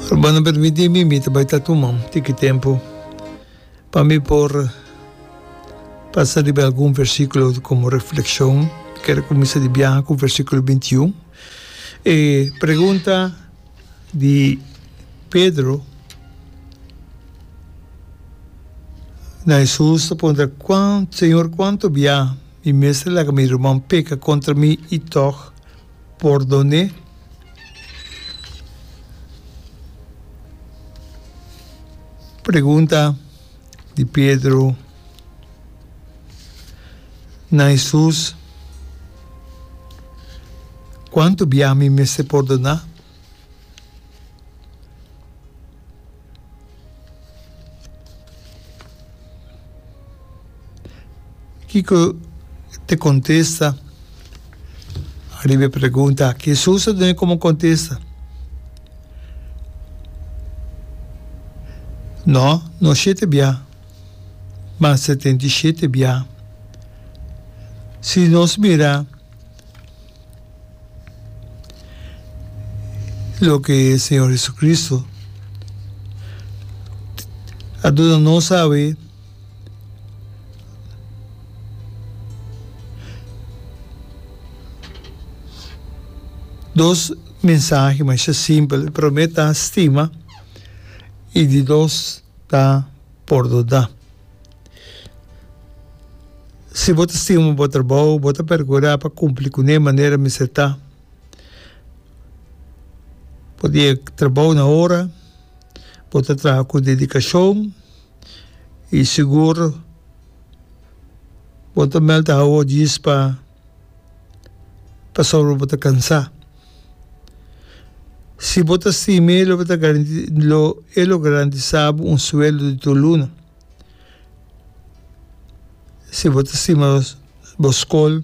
Hermano permiti mi mi ta bai ta tuma un tiki tempo pa mi por pasa riba algun versikulo komo reflekshon mi ker kuminsá di biaha ku versikulo binti i un e pregunta di Pedro na Hesus ta puntra señor kuantu biaha mi mester laga mi ruman peka kontra mi i tòg Pordone. Pregunta di Pedro na Hesus, Kuantu bia mi mester pordona? Kiko ta contesta ariba e pregunta aki? Hesus a duna como contesta, No, no shete bia, ma setenta i shete bia. Si nos mira. Loke Señor Jesucristo a duna nos awe dos mensahe masha simpel. E prome ta stima y di dos ta pordona. Si bo ta stima bo trabou, bo ta pergurá pa kumpli kuné manera mester ta. Bo ta yega trabou na ora, bo ta traha ku dedikashon i sigur bo ta mèlt awo djis pa pasobra bo ta kansá. Si bo ta stima e lo garandisá bo un sueldo di tur luna. Si bo ta stima bo skol,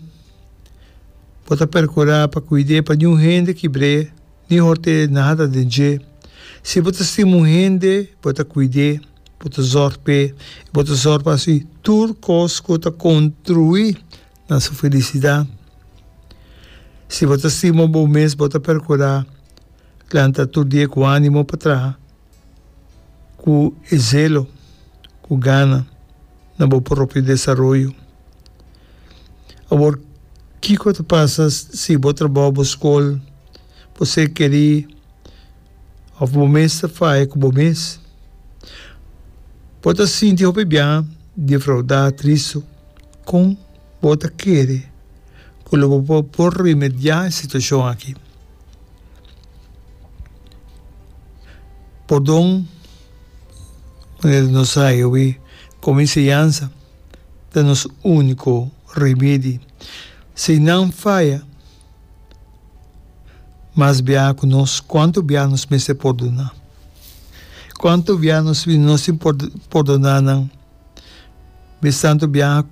bo ta perkurá pa kuid'é pa niun hende kibr'é ni hòrt'é nada den dje. Si bo ta stima un hende, bo ta kuid'é, bo ta zòrg p'é, i bo ta zòrg pa si tur kos ku ta kontruí na su felisidat. Si bo ta stima bo mes, bo ta perkurá planta tur dia ku ánimo pa traha Ku e zelo ku gana na bo propio desaroyo. Awor kiko ta pasa si bo trabou, bo skol, bo ser kerí òf bo mes ta faya ku bo mes? Bo ta sinti hopi biaha defraudá, tristu. Kon bo ta kere ku lo bo por remediá e situashon akí? Pordon, manera nos a haña awe komo enseñansa, ta nos úniko remedi. Si nan faya, mas biaha ku nos, kuantu biaha nos mester pordoná? Kuantu biaha nos mester nos tin por pordoná nan? Mes tantu biaha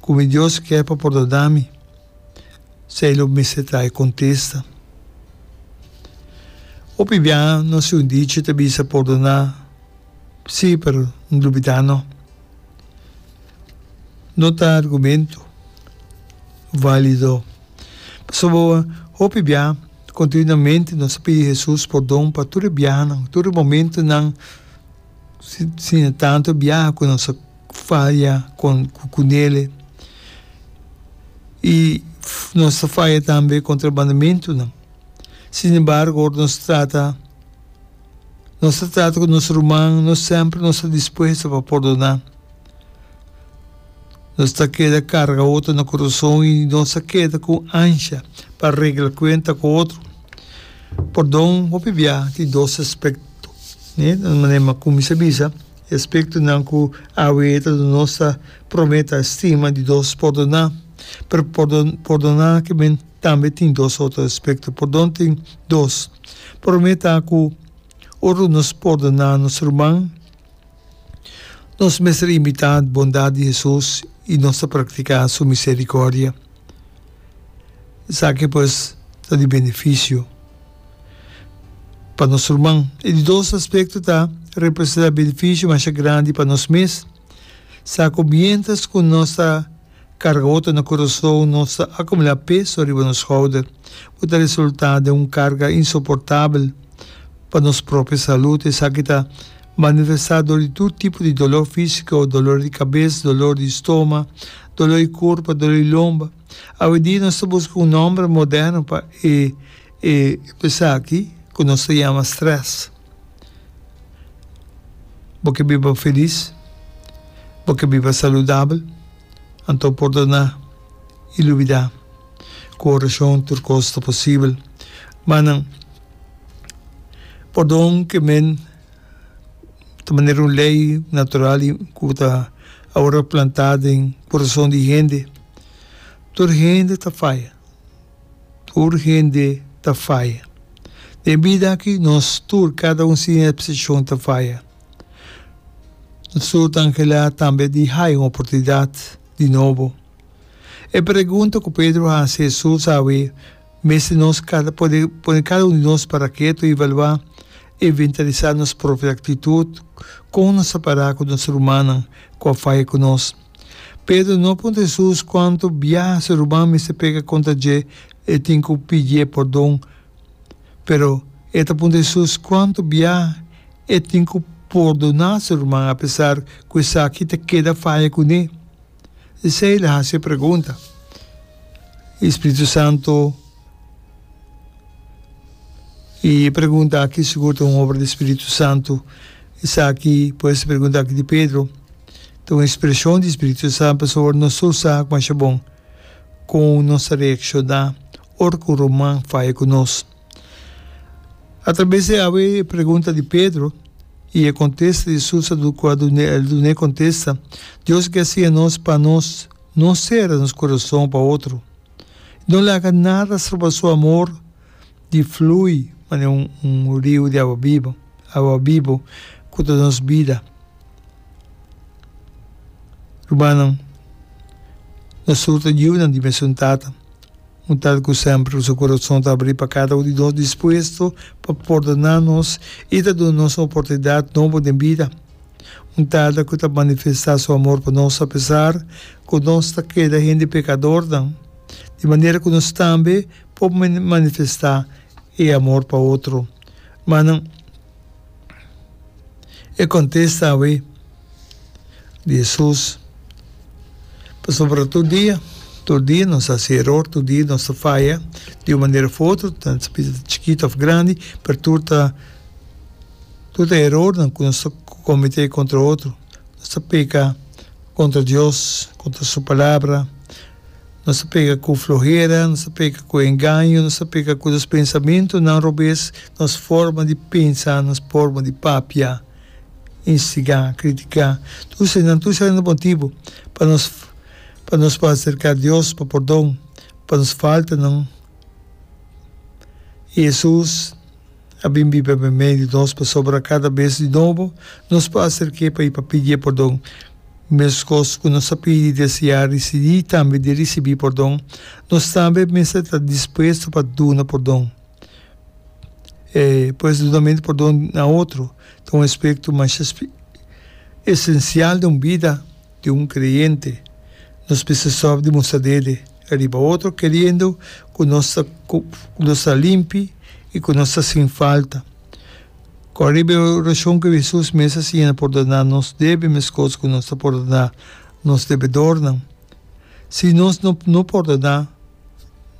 ku mi Dios kier pa pordoná mi? Sei lo mester trae contesta. Hopi biaha nos si un dicho ta bisa pordona si pero no lubida no. No ta argumento valido pasobra hopi biaha continuamente nos ta pidi Jesus pordon pa tur e biahanan tur e momentonan. Sina tantu biaha ku nos a faya kon ku kunele. I nos a faya tambe kontra mandamentunan. Sin embargo, ora nos trata nos ta trata ku nos ruman, no semper nos ta dispuesto pa pordoná. Nos ta keda karga otro na kurason i nos a keda ku ansha pa regla kuenta ku otro. Pòrdon hopi biaha tin dos aspèkto. Di un manera mas cu mi sa bisa, e aspectonan cu awe ta duna nos ta, Prome, ta stima, di dos, pordona. Pero pordon, pordona kimen tambe tin dos otro aspecto. Pordon tin dos. Prome ta cu ora nos pordona nos ruman, Nos mester imitá bondat di Hesus i nos ta praktiká su miserikòrdia. Esaki pues ta di benefisio pa nos ruman. E di dos aspekto ta representá benefisio masha grandi pa nos mes, sa ku miéntras ku nos ta. Carga hoto na Curaçao nos ta acumula peso riba nos schouder cu ta resulta den un carga insoportabel pa nos propio salud. Esaki ta manifesta dor di tur tipo di dolor fisico, dolor di cabes, dolor di stoma, dolor di curpa, dolor di lomba. Awe dia nos ta busca un nomber moderno pa e E esaki ku nos ta yama strès. Bo ke biba felis, bo ke biba saludabel, anto pòrdoná i lubidá. Ku orashon tur kos ta posibel. Ma nan, pòrdon ke men ta manera un lei natural i ku ta awor a plantá den kurason di hende. Tur hende ta faya. Tur hende ta faya. Den bida aki nos tur, kada un sin epseshon, ta faya. Nos tur ta anhelá tambe di haya un oportunidat di nobo. E pregunta ku Pedro hasi Hesus awe mester nos kada pone pone kada un di nos para ketu i evaluá, inventarisá nos propio aktitut, kon nos a para ku nos rumannan ku a faya ku nos. Pedro no puntra Hesus kuantu biaha su ruman mester peka kontra dje e tin ku pidié pordon, pero e ta puntra Hesus kuantu biaha e tin ku pordoná su ruman apesar ku esaki ta keda faya kuné. Esei el a hasi e pregunta, i Spiritu Santu. I e pregunta aki sigur ta un obra di spiritu santu. Esaki, pues, e pregunta aki di Pedro, ta un ekspreshon di spiritu santu pasobra nos ta usa ku masha bon kon nos ta reakshoná ora ku un ruman faya ku nos. Atrabes di awe e pregunta di Pedro i e kontesta di Hesus a duna, ku a duna el duna e kontesta, Dios a ke hasié nos pa nos no sera nos kurason pa otro. I no laga nada stroba su amor di flui manera un un riu di awa biba, awa bibo ku ta nos bida. Rumannan, nosuru ta yunan di mesun Tata, un Tata ku semper ku su kurason ta abrí pa kada un di nos, dispuesto pa pordona nos i ta duna nos un oportunidat nobo den bida. Un Tata ku ta manifestá su amor pa nos apesar ku nos ta keda hende pekadornan, di manera ku nos tambe por manifestá e amor pa otro. Manan, e kontesta awe di Hesus, pasobra tur dia, tur dia nos ta hasi eror, tur dia nos ta faya di un manera of otro, ta chikito of grandi, pero tur ta. Tur e erornan ku nos ta kometé kontra otro, nos ta peka kontra Dios, kontra su Palabra, nos ta peka ku flohera, nos ta peka ku engaño, nos ta peka ku nos pensamentunan robes, nos forma di pensa, nos forma di papia, instigá, kritiká. Tur eseinan, tur esei ta motibu pa nos pa nos por aserká Dios pa pordon pa nos faltanan. Hesus. a bin biba me mei di nos pasobra kada bes di nobo nos por aserk'é pa i pa pidié pordon. Meskos ku nos a pidi deseá risidí i tambe di risibí pordon, nos tambe mester ta dispuesto pa duna pordon. E pues dunamentu pordon na otro ta un aspekto masha esensial den un bida. di un kreyente, nos bisa sòf di mustra dede riba otro keriendo ku nos ta ku nos ta limpi i ku nos ta sin falta. Kòrda riba e orashon ku Hesus mes a siña na pordoná nos debe meskos ku nos ta pordoná nos debedornan. Si nos no no pordoná,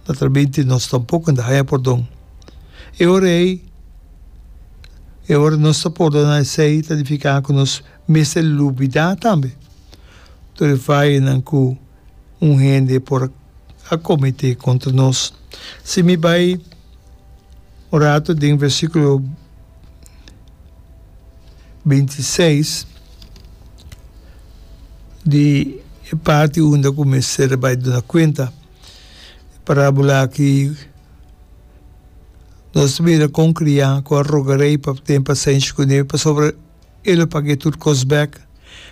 natralmente nos tampoko no ta haña pordon. E ora ei, e ora nos ta pordoná esei ta nifiká ku nos mester lubidá tambe tur e fayanan ku un hende por a kometé kontra nos. Si mi bai un ratu den versíkulo binti i seis di e parti unda ku mester bai duna kuenta e parábola aki, nos ta mira kon kriá ku a roga rei pa ten pasenshi ku e pasobra, e lo pag'é tur kos bèk.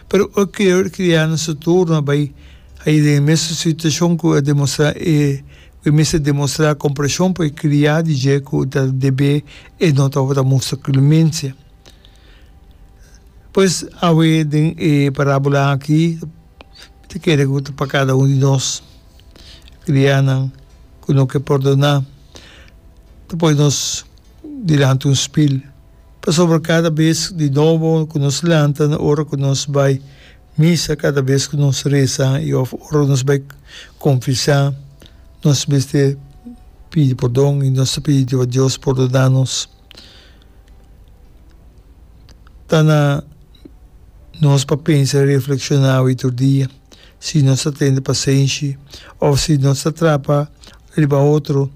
Pero oi ku Erik kriá na su turno a bai haña den e mesun situashon ku e demostrá e ku e mester demostrá kompreshon pa e kriá di dje ku ta deb'é e no tabata mustra klemensia. Pues, awe den e parábola aki mi ta kere ku ta pa kada un di nos, kriánan ku no ke pordoná, ta poi nos dilanti un spil. Pasobra kada bes di nobo ku nos lanta na ora ku nos bai misa, kada bes ku nos resa i òf ora ku nos bai konfesá, nos mester pidi pordon i nos ta pidi Jeova Dios pordoná nos. Ta na nos pa pensa i reflekshoná awe i tur dia si nos ta tende pasenshi òf si nos ta trapa riba otro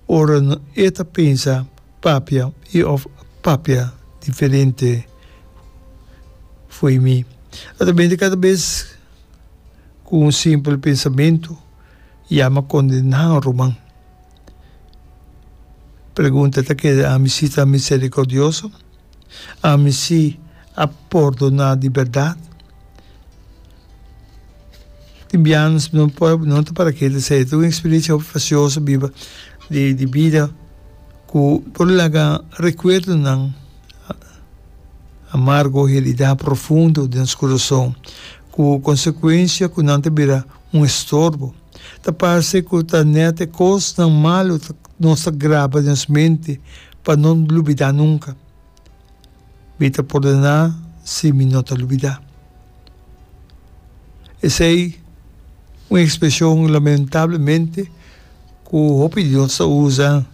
ora e ta pensa Papia i of papia diferente fo'i mi. Atrabente kada bes ku un simpel pensamentu yama kondená un ruman. Pregunta, Ta keda ami si ta miserikordioso? Ami si a pordona di berdad. Tin bianas mi no por, mi no ta para keda esei. Tin un experiencia precioso biba di di bida cu por laga recuerdonan amargo, herida profundo den nos curason cu consecuencia cu nan ta bira un estorbo. Ta parce cu ta net e cosnan malo nos ta graba den nos mente. pa no lubidá nunka. Mi ta pordená si mi no ta lubidá. Esei un ekspreshon lamentablemente ku hopi di nos ta usa.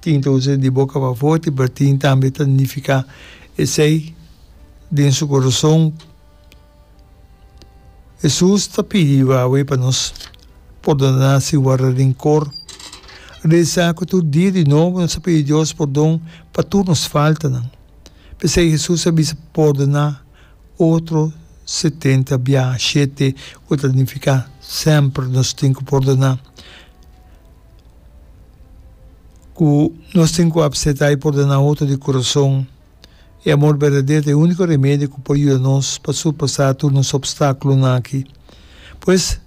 Tin ta usa di boka pa forti, pero tin tambe ta nifiká esei den su koroson. Hesus ta pidi Yahweh pa nos pordoná sin warda rinkor. Realisá ku tur dia di nobo nos a pidi Dios pordon pa tur nos faltanan. P'esei Hesus a bisa pordoná otro setenta bia shete, ku ta nifiká semper nos tin ku pordoná. Ku nos tin ku apseptá i pordoná otro di kurason. E amor berdadero ta e úniko remedio ku por yuda nos pa surpasá tur nos opstákulonan aki. Pues,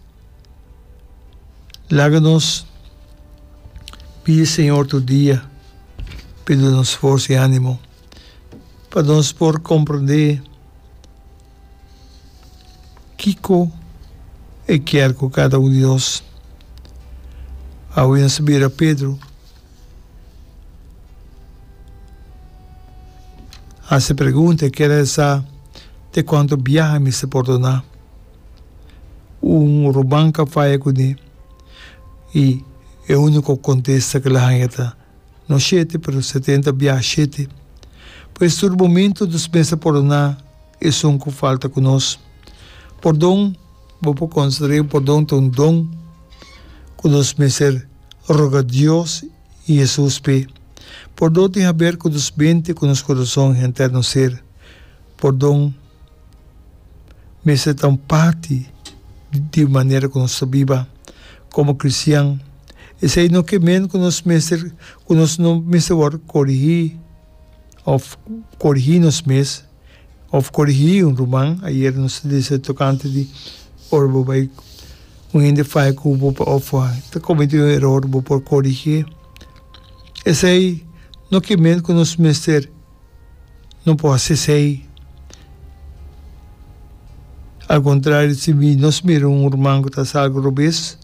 laga nos pidi Señor tur dia pa e duna nos forsa i ánimo pa nos por komprondé. Kiko e kier ku kada un di nos a wens a bira Pedro? Hasi e pregunta e kier el sa te kuantu biaha e mester pordoná. Un ruman ka faya kuné i e úniko kontesta ku el a haña ta, No shete, pero setenta biaha shete. Pues tur bomintu nos mester pordoná esun ku falta ku nos. Pordon, bo por konsider'é pordon ta un don ku nos mester roga Dios i Hesus p'é. Pordon tin haber ku nos mente, ku nos kurason, henter nos ser. Pordon. mester ta un parti di manera ku nos ta biba komo kristian. Esei no ke men ku nos mester ku nos no mester wòrdu korigí òf korigí nos mes òf korigí un ruman. Ayer nos ta disa tokante di ora bo bai un hende fai ku bo òf a ta kometí un eror bo por korigí. Esei no ke men ku nos mester. no por hasi esei. Al kontrario, si nos mira un hurman ku ta hasi algu robes,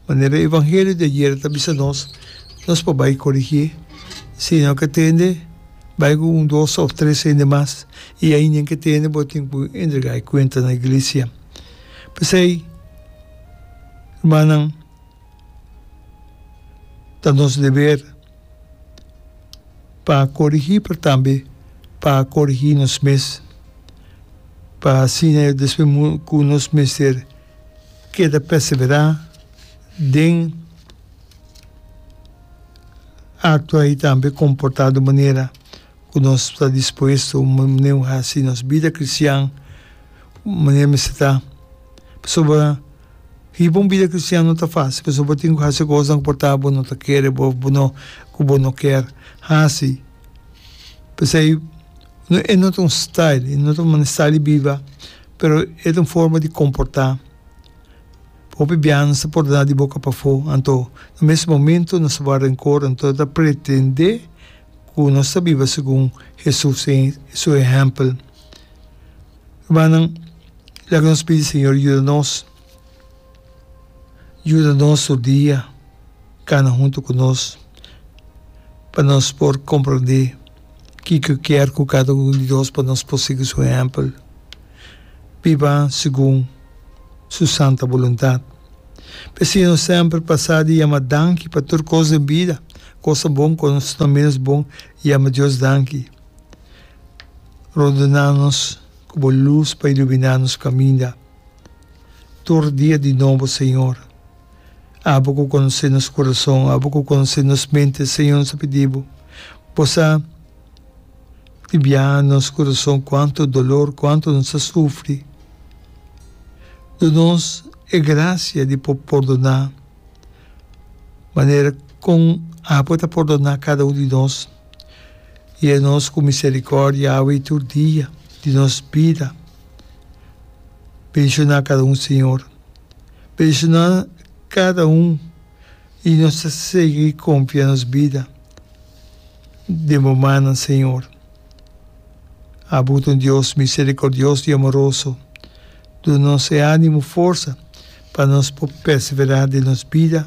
manera e evangelio di ayera ta bisa nos, nos por bai korigí. Si no ke tende, bai ku un, dos òf tres hende mas, i ai nen ke tende bo tin ku entregá e kuenta na iglesia. P'esei, hurmannan, ta nos deber. pa corigi pero tambe pa corigi nos mes pa asina yo despues mo cu nos mester keda persevera den actua y tambe comporta de manera cu nos ta dispuesto nos bida cristian manera mester ta pasobra. Hiba un bida kristian no ta fásil, pasobra bo tin ku hasi kosnan ku por tabata bo no ta kere bo òf bo no ku bo no kèr hasi. P'esei, e no ta un style, e no ta un manestá di biba, pero e ta un forma di komportá. Hopi biaha nos ta pordoná di boka pafó, anto na mes momentu nos ta wak renkor, anto nos ta pretendé ku nos ta biba segun Hesus, su ehèmpel. Rumannan, laga nos pidi Señor yuda nos, yuda nos tur dia, kana huntu ku nos pa nos por komprondé kiko kier ku kada un di nos pa nos por sigui su ehèmpel, biba segun su santa boluntat. P'e asina nos semper pasá di yama danki pa tur kos den bida, kos ta bon, kos ta ménos bon, yama Dios danki. Rondena nos ku bo lus pa iluminá nos kaminda tur dia di nobo, Señor. Abo ku konosé nos kurason, abo ku konosé nos mente, Señor, nos ta pidi bo, bo sa di biaha nos kurason kuantu dolor, kuantu nos a sufri. Duna nos e grasia di por pordoná manera kon abo ta pordoná kada un di nos. i e nos ku miserikòrdia a hui tur dia di nos bida. Benshoná kada un, Señor. Benshoná kada un i nos ta sigui konfia nos bida den bo mannan, Señor. Abu ta un Dios miserikordioso i amoroso. Duna nos e ánimo, forsa pa nos por perseverá den nos bida.